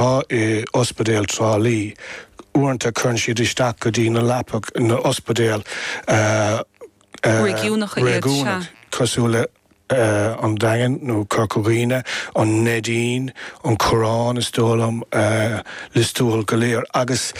Atá in ospidéal Trá Lí. Uaireanta cuireann siad isteach go dtí na leapacha in na hospidéil Réigiúnacha iad, cosúil le an Daingean nó Corca Dhuibhne, an Neidín, Cill Orglan is dóigh liom, Lios Tuathail, go léir agus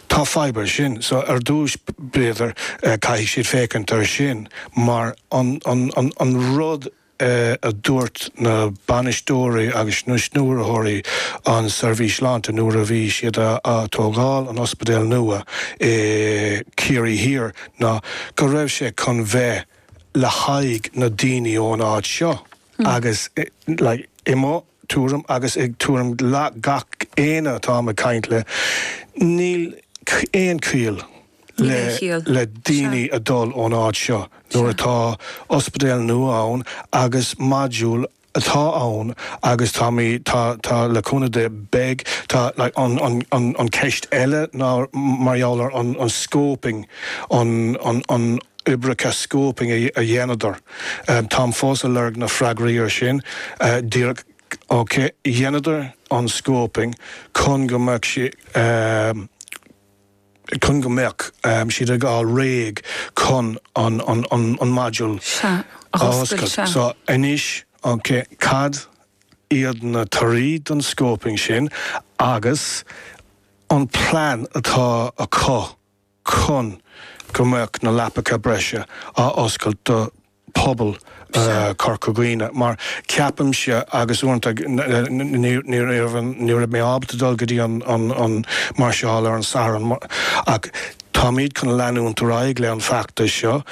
tá fadhb ar sin. So ar dtúis b'fhéidir caithfidh siad féachaint ar sin mar an rud é a dúirt na bainisteoirí agus na stiúrthóirí an seirbhís sláinte nuair a bhí siad a' tógáil an ospidéal nua i Ciarraí Thiar ná go raibh sé chun bheith le haghaidh na daoine ón áit seo agus like i mo thuairim agus i dtuairim gach éinne atá mé ag caint le níl aon chiall Níl aon chiall. le daoine a dul ón áit seo nuair atá ospidéal nua ann agus module atá ann agus tá mé tá tá le cúnamh Dé beidh tá like an an an an ceist eile ná mar gheall ar an an scoping an an an oibreacha scoping a a dhéanadar táim fós a lorg na freagraí ar sin díreach ok dhéanadar an scoping chun go mbeadh sé chun go mbeadh siad ag fháil réidh chun an module a oscailt. So anois, ok, cad iad na torthaí don scoping sin agus an plean atá acu chun go mbeadh na leapacha breise á oscailt do pobal Corca Dhuibhne mar ceapaimse agus uaireanta ní raibh mé ábalta dul go dtí an máirseáil ar an Satharn ach táimid chun leanúint ar aghaidh le an feachtas seo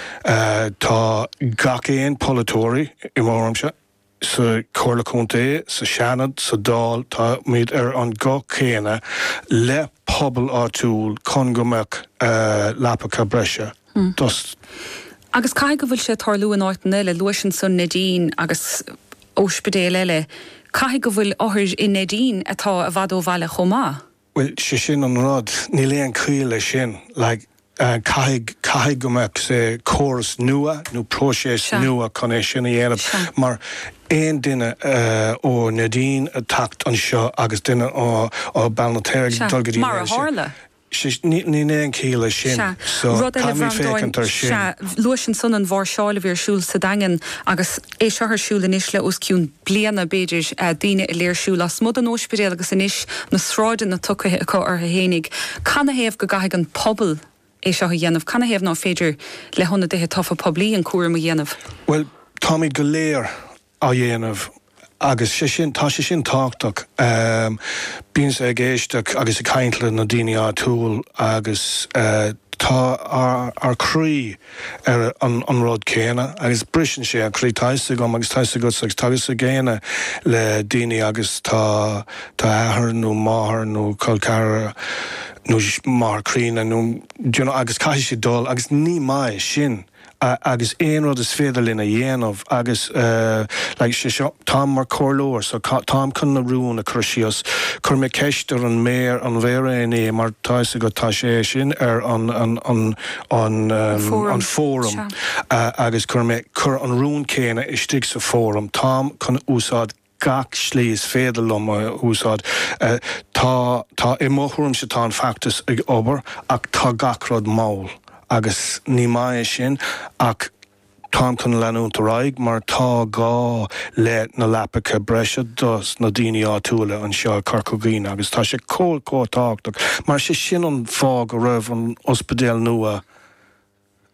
tá gach aon polaiteoir i mo thuairimse. sa Chomhairle Contae, sa Seanad, sa Dáil, táimid ar an nguth céanna le pobal áitiúil chun go mbeadh leapacha breise dos. Agus caithfidh go bhfuil sé ag tarlú in áiteanna eile, luais ansan Neidín agus ospidéil eile, caithfidh go bhfuil othair i Neidín atá i bhfad ó bhaile chomh maith. Bhuel, sé sin an rud. Níl aon ciall le sin. Like, caithfidh, caithfidh go mbeadh córas nua nó próiseas Sea. nua chun é sin a dhéanamh. Sea. Mar aon duine ó Neidín ag teacht anseo agus duine ó, ó Beal na Tair ag Sea. dul go dtí Mar a Neill sé, thárla. sé, ní, níl aon ciall le sin. Sea. So, Rud eile, caithfimid Bhreandáin, féachaint ar sea, sin. luais ansan an mháirseáil a bhí ar siúl sa Daingean agus é seo ar siúl anois le os cionn. bliana, b'fhéidir, daoine ag léirsiú lasmuigh den óispidéal agus anois na sráideanna tugtha acu ortha fhéinig. Canathaobh go gcaithfidh an pobal é seo a dhéanamh? Canathaobh nach féidir le hionadaithe tofa poiblí an cúram a dhéanamh? Bhuel, táimíd go léir á dhéanamh agus sé sin, tá sé sin tábhachtach. Bímse ag éisteacht agus ag caint le na daoine áitiúil agus tá ár croí, ar an rud céanna agus briseann sé an croí. Tá 'fhios agam agus tá 'fhios agatsa agus tá 'fhios ag aoinne le daoine agus tá athair nó máthair nó col ceathrar nó máthair críonna nó do you know agus caithfidh siad dul agus ní maith é sin agus aon rud is féidir linn a dhéanamh agus like sé seo táim mar comhairleoir so táim chun na rún a chur síos. Chuir mé ceist ar an méar an mhéara inné mar tá 'fhios agat tá sé sin ar an an An Fóram, sea. agus cuir mé, cuir an rún céanna istigh sa Fóram. Táim chun úsáid gach slí is féidir liom a úsáid. Tá, tá, i mo thuairimse tá an feachtas ag obair ach tá gach rud mall agus ní maith é sin ach, Táim chun leanúint ar aghaidh mar tá gá le na leapacha breise dos na daoine áitiúla anseo i Corca Dhuibhne agus tá sé chomh chomh tábhachtach mar sé sin an fáth go raibh an ospidéal nua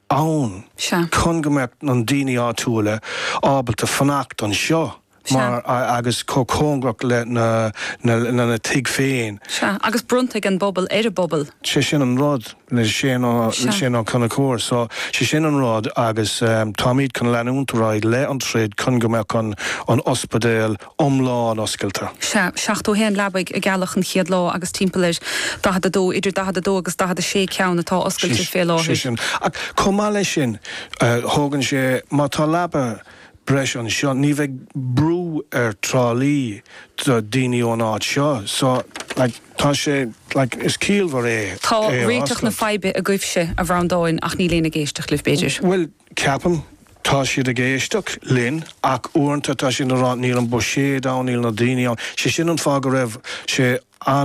ann Sea. chun go mbeadh na daoine áitiúla ábalta fanacht anseo. Sea. mar agus chomh cóngarach lena lena tigh féin. Sea. Agus bronnadh an bpobal ar an bpobal. sé sin an rud le Seán Ó Sea. Seán Ó Conchúir. So, sé sin an rud agus táimíd chun leanúint ar aghaidh le an troid chun go mbeadh an an ospidéal iomlán oscailte. Sea. Seachtó a haon leabaidh a gealladh an chéad lá agus timpeall ar daichead a dó, idir daichead a dó agus daichead a sé ceann atá oscailte fé láthair. Sé sin. Ach chomh maith leis sin tógann sé, má tá leaba breis anseo. Ní bheidh brú ar Trá Lí do daoine ón áit seo so like tá sé like is ciallmhar é Tá é a réiteach na oscailt. faidhbe agaibhse, a Bhreandáin, ach níl éinne ag éisteacht libh, b'fhéidir. Bhuel, ceapaim, tá siad ag éisteacht linn ach uaireanta tá siad a' rá níl an buiséad ann, níl na daoine ann. Sé sin an fáth go raibh sé ana